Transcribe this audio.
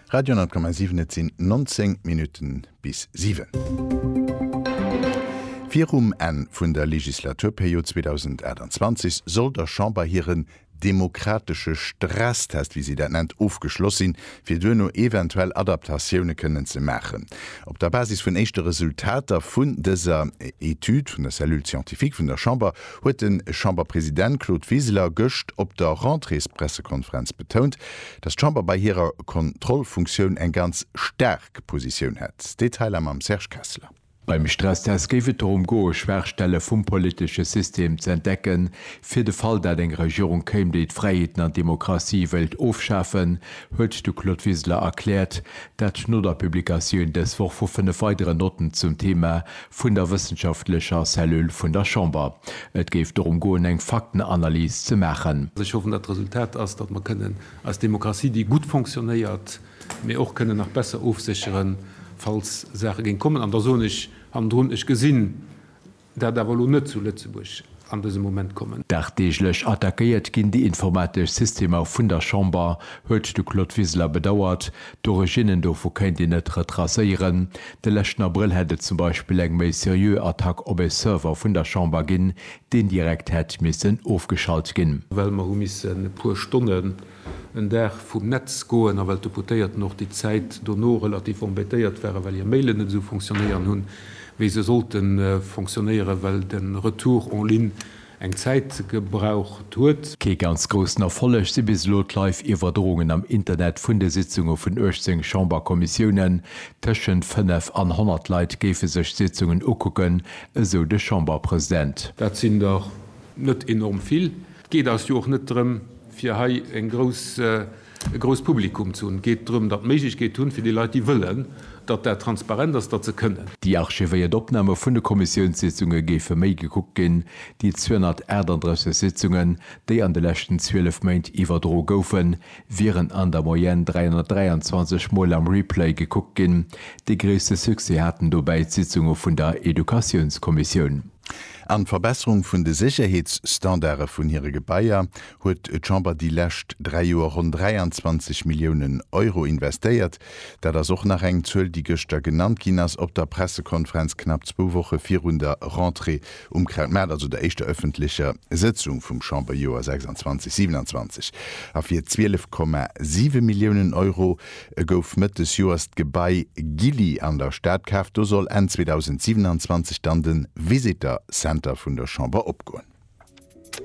Radio 10,7 Et sinn 19 Minutten bis siwen. Virum Enn vun der Legislaturperiod 2028 soll der Chamber hiren demokratesche Stresstest, wéi si dat nennt, ofgeschloss sinn, fir duerno eventuell Adaptatioune kënnen ze maachen. Op der Basis vun éischte Resultater vun dëser Etüd vun der Cellule scientifique vun der Chamber huet de Chamberpresident Claude Wiseler gëscht op der Rentréespressekonferenz betount, datt d'Chamber bei hirer Kontrollfunktioun eng ganz staark Positioun hätt. Detailer mam Serge Kessler. Beim Stresstest géif et dorëm goe Schwaachstelle vum politesche System ze entdecken. Fir de Fall dat eng Regierung kéim, déi d'Fräiheeten an d'Demokratie wéilt ofschafen, huet de Claude Wiseler erkläert, dat no der Publikatioun dës Woch vu fënnef weideren Notten zum Thema vun der wëssenschaftlecher Cellule vun der Chamber. Et géif dorëm goen, eng Faktenanalys ze maachen. Ech hoffen, datt d'Resultat ass, datt mer kënnen eis Demokratie, déi gutt fonctionnéiert, mee och kënnen nach besser ofsécheren, falls Saache géing kommen. An da soen ech hannendrun, Ech gesinn dat awer elo net zu Lëtzebuerg. an dësem Moment kommen. Dagdeeglech attackéiert ginn déi informatesch Systemer vun der Chamber, huet de Claude Wiseler bedauert. D'Originnen dovu kéint een net retracéieren. De leschten Abrëll hätt et zum Beispill eng méi seriö Attack op e Server vun der Chamber ginn, deen direkt hätt missen ofgeschalt ginn. Well mer hu missen e puer Stonne en Dag vum Netz goen a well d'Deputéierten och déi Zäit dono relativ embêtéiert ware well hir Mailen net esou fonctionnéieren hunn, wéi se sollte fonctionnéieren, well de Retour en ligne eng Zäit gebraucht huet. Kee ganz groussen Erfolleg si bis elo d'Live-Iwwerdroungen am Internet vun de Sitzunge vun 18 Chamberkommissiounen. Tëschent 5 an 100 Leit géife sech d'Sitzungen ukucken, esou de Chamberpresident. Dat sinn der net enorm vill. Et geet eis jo och net drëm, fir hei e grousst Publikum ze hunn. Et geet drëm, datt Méiglechkeet hunn, fir déi Leit, déi wëllen, datt dat transparent ass, datt se kënnen. Déi archivéiert Opname vun de Kommissiounssitzunge géife méi gekuckt ginn, déi 238 Sitzungen, déi an de leschten 12 Méint iwwerdro goufen, wieren an der Moyenne 323 Mol am Replay gekuckt ginn. Dee gréisste Succès haten dobäi d'Sitzunge vun der Educatiounskommissioun. An d'Verbesserung vun de Sécherheetsstandarde vun hire Gebaier huet d'Chamber déi lescht dräi Joer ronn 23 Milliounen Euro investéiert. Dat ass och nach eng Zuel, déi gëschter genannt ginn ass op der Pressekonferenz, knapp zwou Woche virun der Rentrée um Kraut Maart, also der éischter ëffentlecher Sëtzung vum Chamberjoer 26/27. A fir 12,7 Milliounen Euro E gouf Mëtt des Joers d'Gebai Gilly an der Stad kaaft. Do soll Enn 2027 dann de Visitor Center vun der Chamber opgoen.